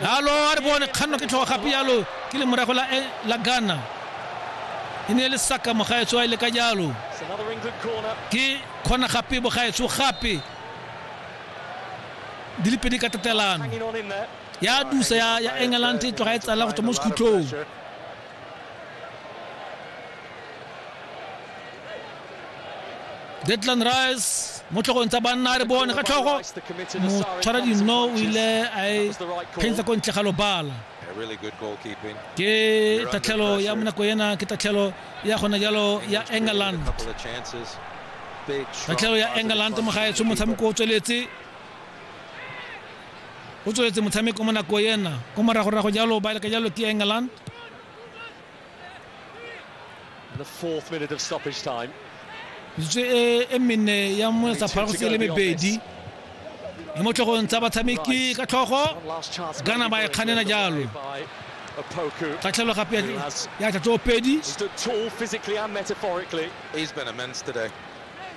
nalo a re bone kganno ke tlhogo gape jalo ke le morago la eh, la Ghana e ne e le saka mogaetso a ile ka jalo ke kgona gape bogaetso gape di le pedi ka tatelano ya dusa ya england e tloga e tsala go tswa mo sekhutlhong detlan rice mo tlhogong tsa banna a re bone ka tlhogo motshwara dino o ile a e phentsha ko ntle ga lobala ke tatlhelo ya monako ena ke tatlhelo ya gona jalo ya england tatlhelo ya england mo gaetsho motshameko o tsweletse o tsweletse motshameko mo nako ena ko moragorago jalo ba leka jalo ke england the fourth minute of stoppage time metsotso e, e mene ya mo sa phara go se le mebedi le mo tlhogong tsa batshameki ka tlhogo gana ba e kganena jalo kgatlhelo gape ya tlatso pedi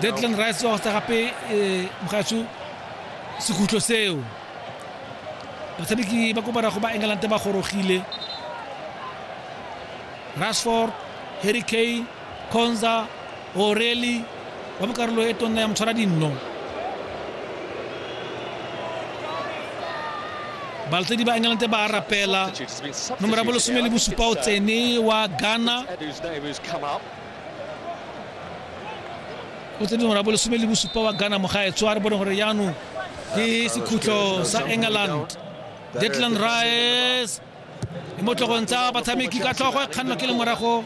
Declan Rice wa go sa gape eh, mogatsho sekhutlo seo batshameki ba ko barago ba england ba gorogile rashford harry kane conza oreli wa mo karolo e tonna ya motshwara dinno baltsedi ba england ba rapela Substitutes been nomoro ya substituted bolesome here. le I think bosupa o it's, uh, tsene wa ghana Edu Davis come up. o tsene dingwaga bo lesome le bosupa wa ghana mogaetswa re bone gore jaanong ke sekhutlo sa england detlan rice e mo tlogong tsa batshameki ka tlhogo e kgannwa ke le morago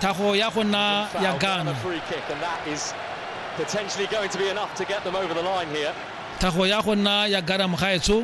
thago ya go nna ya ghana thago ya go nna ya ghana mogaetsho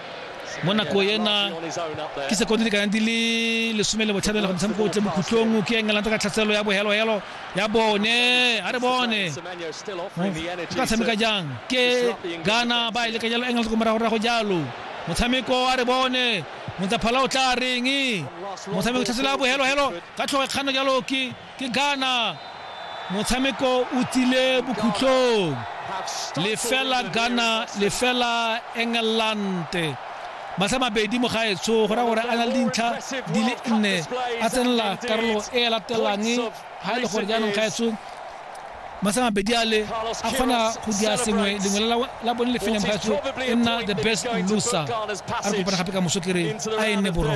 mo nako ena ke sekondi lekana di le lesome le botlhabela go motshameko o tle bokhutlong ke england ka tlhatselo ya bohelohelo ya bone a re bone ka tshameka jang ke gana ba e leka jalo england ko moragorago jalo motshameko a re bone motsaphala o tla reng motshameko tlhatselo ya bohelohelo ka tlhogo kgano jalo ke Ke Ghana, motshameko o tsile bokhutlong. Lefela Ghana, lefela Engelante. Matlha mabedi mo gaetsho go raya gore a na le dintlha di le nne a tsenela karolo e e latelang ga e le gore jaanong gaetsho matlha mabedi a le a kgona go dia sengwe lengwe la bone le feleng gaetsho e nna the best loser a re kopana gape ka moso kere a e nne borwa